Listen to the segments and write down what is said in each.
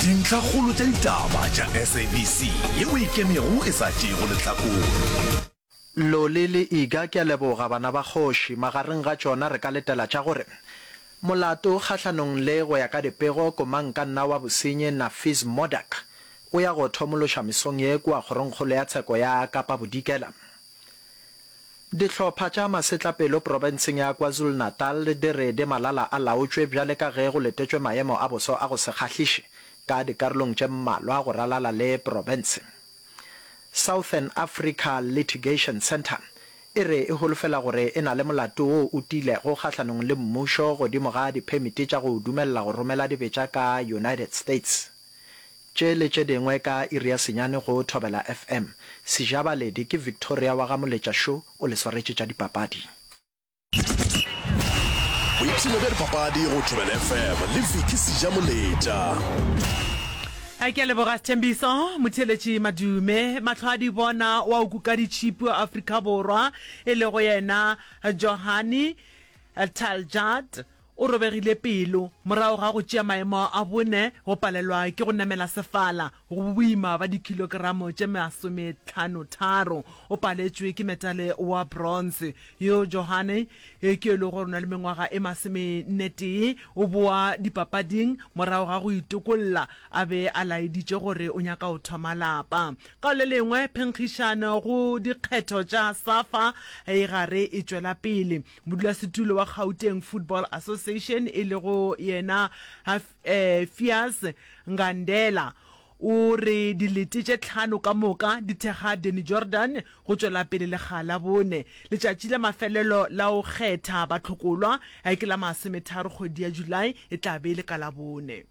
Dintlhakgolo tša ditaba tša SABC ye o e kemego e sa tšeego lehlakore. Loli le Iga, ke a leboga bana ba kgoši. Magareng ga tšona re ka letela tša gore, Molato kgahlanong le go ya ka dipego Komangkanna wa bosenyi Nafees Modak o ya go thomološa mesong ye kua Kgorongkgolo ya Tsheko ya Kapa Bodikela. Dihlopha tša masetlapelo profenseng ya KwaZulu-Natal di re di malala a laotšwe bjale ka ge go letetšwe maemo a boso a go se kgahliše ka dikarolong tše mmalwa go ralala le profense. Southern Africa Litigation Centre e re e holofela gore e na le molato wo o tiilego kgahlanong le mmušo godimo ga diphemiti tša go o dumelela go romela dibetša ka United States. Tše le tše dingwe ka iri ya senyane go Thobela FM. Sejabaledi ke Victoria wa ga Moletša Šo o le swaretše tša dipapadi. Boipshino bja dipapadi go Thobela FM le Vicky Sejamoletša. Ke a leboga Sethembiso Motheletši Madume. Mahlo a di bona wa o kuka ditšhipi wa Afrika Borwa e lego yena Johane Taljard. O robegile pelo morago ga go tšea maemo a bone, go palelwa ke go namela sefala go boboima ba dikhilogeramo tše masomethlanotharo. O paletšwe ke metale wa bronze. Yo Johanne, yo ke e lego gore o na le mengwaga e masomennetee, o boa dipapading morago ga go itokolla, a be a laeditše gore o nyaka go thoma lapa. Ka le lengwe, phenkgišano go dikgetho tša Safa e gare e tšwela pele. Modulasetulo wa Gauteng Football Association e lego yena Hafeas Ngandela o re dilete tše tlhano ka moka di thekga Danny Jordan go tšwela pele lekga la bone. Letšatši la mafelelo la go kgetha batlhokolwa ke la masometharo kgwedi ya July, e tla be e le ka Labone.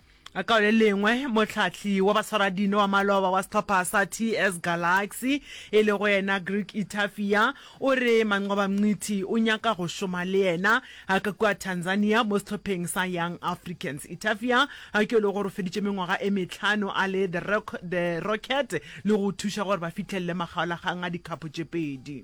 Ka le lengwe, mohlahli wa baswaradino wa maloba wa sehlopha sa TS Galaxy e lego yena Greg Itafia o re Manqoba Mngqithi o nyaka go šoma le yena ka kua Tanzania mo sehlopheng sa Young Africans. Itafia ke yo e lego gore o feditše mengwaga e mehlano a le The Rocket le go thuša gore ba fihlelele makgaolakgang a dikhapo tše pedi.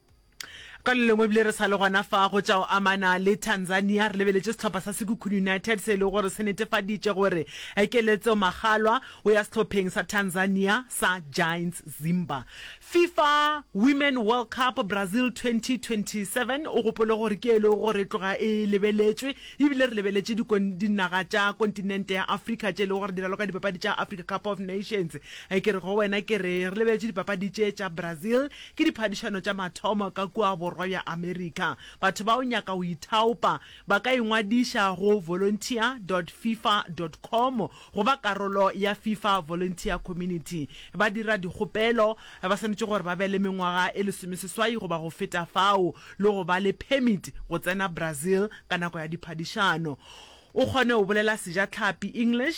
Ka le lengwe ebile re sa le gona fa go tša go amana le Tanzania, re lebeletše sehlopha sa Sekhukhune United se e lego gore se netefaditše gore Keletso Makgalwa o ya sehlopheng sa Tanzania sa Giants Zimba. Fifa Women World Cup Brazil 2027, o gopole gore ke e lego gore e tloga e lebeletšwe ebile re lebeletše dinaga tša kontinente ya Afrika tše e lego gore di raloka dipapadi tša Africa Cup of Nations. Ke re go wena ke re re lebeletše dipapadi tše tša Brazil Ke diphadišano tša mathomo ka kua Borwa bja Amerika. Batho bao nyaka go ithaopa ba ka ingwadiša go volunteer dot fifa dot com go ba karolo ya Fifa Volunteer Community. Ba dira dikgopelo ba swanetše gore ba be le mengwaga e lesomeseswai goba go feta fao le go ba le permit go tsena Brazil ka nako ya diphadišano. O kgone go bolela Sejatlhapi, English,